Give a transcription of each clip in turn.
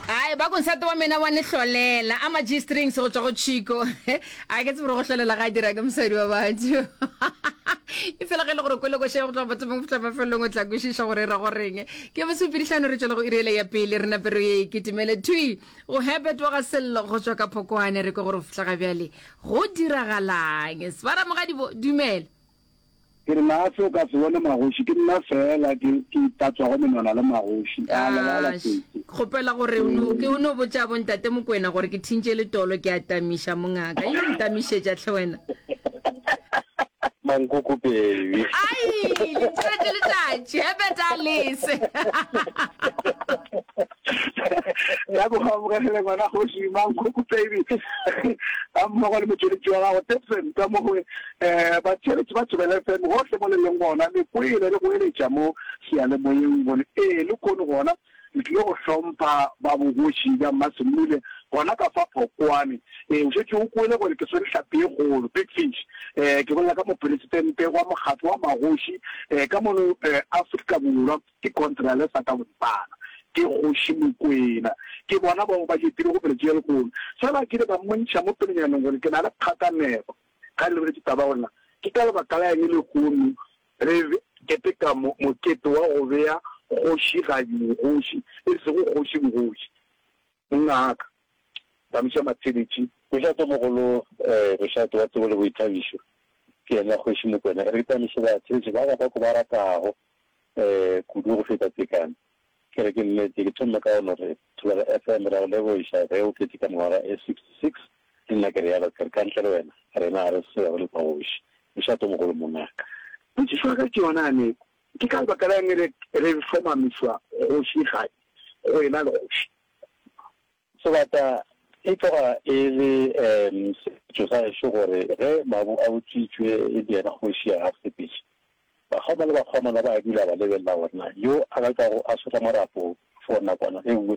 ai ba konsate wa mena wa ne hlolela a ma-g strings go tswa go chico a ke tsebore go hlolela ga a dira ke mosadi wa batho e fela ge le gore kwelokoše go tloga bathomong go fihla mafelelong o tla kwešiša gore e ra goreng ke mosupedihlano re tswela go irele ya pele re napero ye e ketemele twi go hebet wa ga sello go tswa ka phokwane re kwe gore go fihla ga bjale go diragalang sebara mogadibo dumela Ke re, Na se o ka se bone magoši? Ke nna feela ke, ke itatswago menwana le magoši. A lebala Aa, se, se. kgopela gore o no, ke, o no botša bo Ntate Mokwena gore ke thintše letolo, ke a tamiša, mongaka. Yo o ntamišetša hle wena? Mankoko, baby. Ai, letšatši, letšatši, Herbert a lese. ya go amogegele ngwana kgoši Mankgoku Baby ga mmogo le motšweletši wa gago Debson ka mo gongwe. Um batšweletši ba Thobela FM gohle mo le leng gona, le kwele le goeletša mo seyalemoyeng gore ee le kono gona le tlile go hlompha ba bogoši bja Mmasemmule gona ka fa Phokwane. Ee, o šetše o kwele gore ke swere hlapi e kgolo, big fish. Um ke bolela ka Moporesitente wa Mokgatlo wa Magoši um ka mono um Afrika Borwa. Ke Contrale sa ka boripana. Ke Kgoši Mokwena. Ke bona bao ba jetilego pele tše ya lehono. Fela ke ile ka mmontšha mo pelonyaneng gore ke na le kgakanego. Ga le re ke taba gore na ke ka lebaka la eng lehono re keteka mokete wa go bea Kgoši Gadibogoši e sego Kgoši Bogoši. Mongaka, Tsamisa Matshebetši. Mošatomogolo, Mošato wa tsebo le boithabišo, ke yena Kgoši Mokwena. E re ke tsamisibatshebetši ba ka ba ko ba ratago. kudu go feta tekano. Ke re ke lletše, ke thomile ka go no re, Thobela FM, ra go lebogiša ge o tletše ka mengwaga e 66 le nna ke realo. Ke re ka ntle le wena rena ga re selo re le kgoši. Mošatomogolo mongaka. Potšišo ya ka ke yona ya neko, ke ka lebaka la eng re re hlomamišwa kgoši-kgadi go ena le kgoši? Sebata e tloga e le sepetšo sa gešo gore ge mabu a utswitšwe e le yena kgoši ya gasepetše, bakgoma le bakgomana ba dula ba lebelela gore na yo a ka tlago a sotla marapo for nakwana e nngwe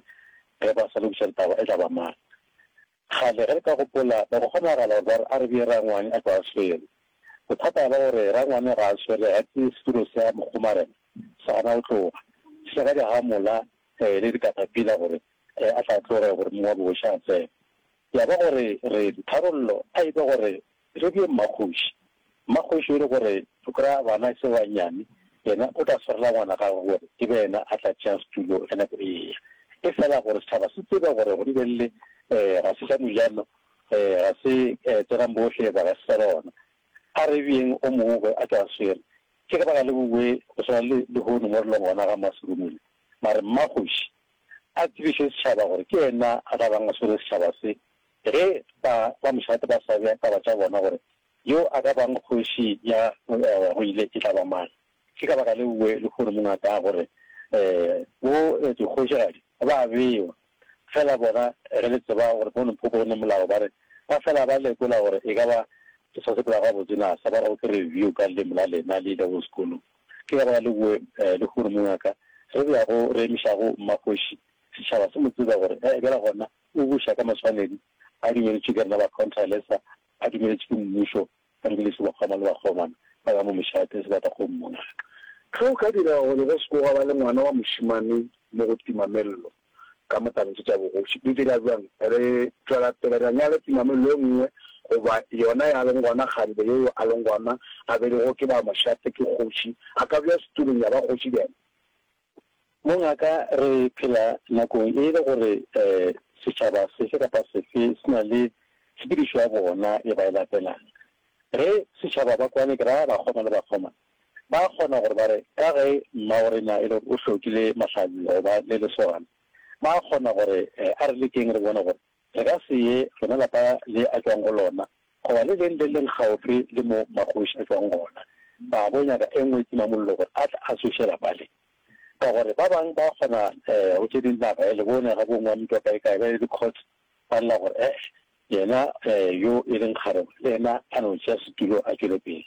ge ba sa lokiša litaba e tla ba mang. Kgale ge re ka gopola ba go kgonagala gore ba re a re bee rangwane a tloga a swere. Bothata ba gore rangwane ga a swere ga ke setulo sa mokgomarena sa gana go tloga se ga di hamola le dikatapila gore Ge a sa tloge gore mong wa bogoši a tsene, ya ba gore re tharollo a e be gore re bje mmakgoši. Mmakgoši o re gore o kry-a bana e se ba nnyane, yena o tla swarela ngwana gagwe gore e be yena a tla tšea setulo ge nako e eya. E fela gore setšhaba se tsebe gore go lebelele ga se sa Mojano, ga se Tsenang bohle eba ga se sa lona. A re byeng o mongwe gore a tšwe a swere. Ke ge ba ka le bowe go swana le lehono mo re leng gona ga Mmaserumula. Mare mmakgoši a tsebiše setšhaba gore ke yena a tla bang a swere setšhaba se, ge ba ba mošate ba sa bea taba tša bona gore yo a ka bang kgoši ya go ewa go ile e tla ba mang. Ke ka baka leo lehono mongwe a kago re, Bo dikgošigadi ba a bewa, feela bona ge le tseba gore bo Limpopo go ne molao ba re ba fela ba lekola gore e ka ba ke sa sepela gabotse na sa ba go ke review ka leleme la lena le ilego sekolong. Ge gona le bowe lehono mongaka, re be ya go re emišago mmakgoši, setšhaba se mo tseba gore e bjale gona o buša ka maswanedi a dumeletšwe ke rena bakhontralesa, a dumeletšwe ke mmušo, a dumeletšwe ke bakgoma le bakgomana ba ba mo mešate sebatakgong mongaka. Ge o ka dira gore ba se ke gwa ba le ngwana wa mošemane mo go Timamello. ka motsamaiso tša bogoši. Re dira bjang? Re tšwela pele ra nyala tumamelo e nngwe, goba yona ya leng gona kgarebe ye yo a leng gona a beilwego ke ba mošate, ke kgoši, a ka bja setulong ya ba kgoši bjang? Mongaka, re phela nakong e le gore setšhaba sefe kapa sefe se na le tshepedišo ya bona ye ba e latelang. Ge setšhaba ba kwane, ke ra bakgoma le bakgomana, Ba a kgona gore ba re, Ka ge mmaworena e le gore o hlokile mahlabjo go ba le lesogana, ba a kgona gore a re lekeng re bone gore re ka se ye rena lapa le a tšwago go lona goba le leng le leng kgaufsi le mo magoši a tšwago gona, ba a bo nyaka e nngwe timamollo gore a tle a tsoše lapa le. Ka gore ba bang ba a kgona go tše ding naga ya lebone ga bo ngwa mpwa kaekae ba ye dikgotho. Ba lla gore, Eh, yena yo e leng kgarebe le yena a no tšea setulo a tšwele pele.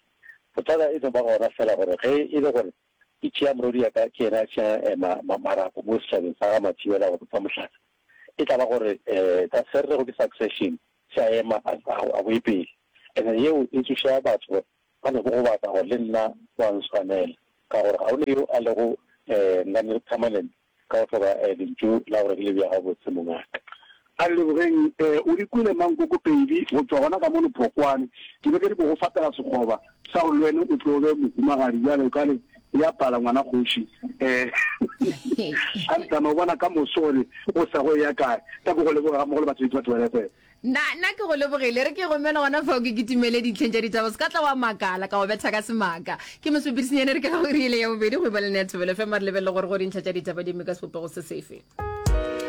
Bothata e no ba gona feela gore ge e le gore ke tšea morwediaka ke yena a tšeang marapo mo setšhabeng sa ga Mathibela go bopa mohlala, e tla ba gore sa swerrego ke succession se a ema a boe pele. And-e yeo e tsoša batho gore ba no gogobatsa gore le nna go a nswanela ka gore ga go ne yo a lego nganne permanent. Ka go swara lentšu la gore ke le bea gabotse, mongaka. A re, Lebogeng, o di kwele mang koko pedi go tšwa gona ka mo lephokwane? Ke be ke nyako go fatela sekgoba sa gore le wene o tlo be mohumagadi bjale. Kale e a pala, ngwana kgoši. A re, Tsamaya o bona ka moso gore go sa go eya kae. Ka ko go leboga ga mmogo le batho, le batho ba Lefepo. Na, na ke go lebogile, re ke gomela gona fao ke kitimele ditlheng tša ditaba, se ka tla wa makala ka go betha ka semaka. Ke mosepedisenyane re ke ga o rile ya bobedi go iba le nethobelo fm re lebelele gore go dintlha tša ditaba di mme ka sebopego se sefe.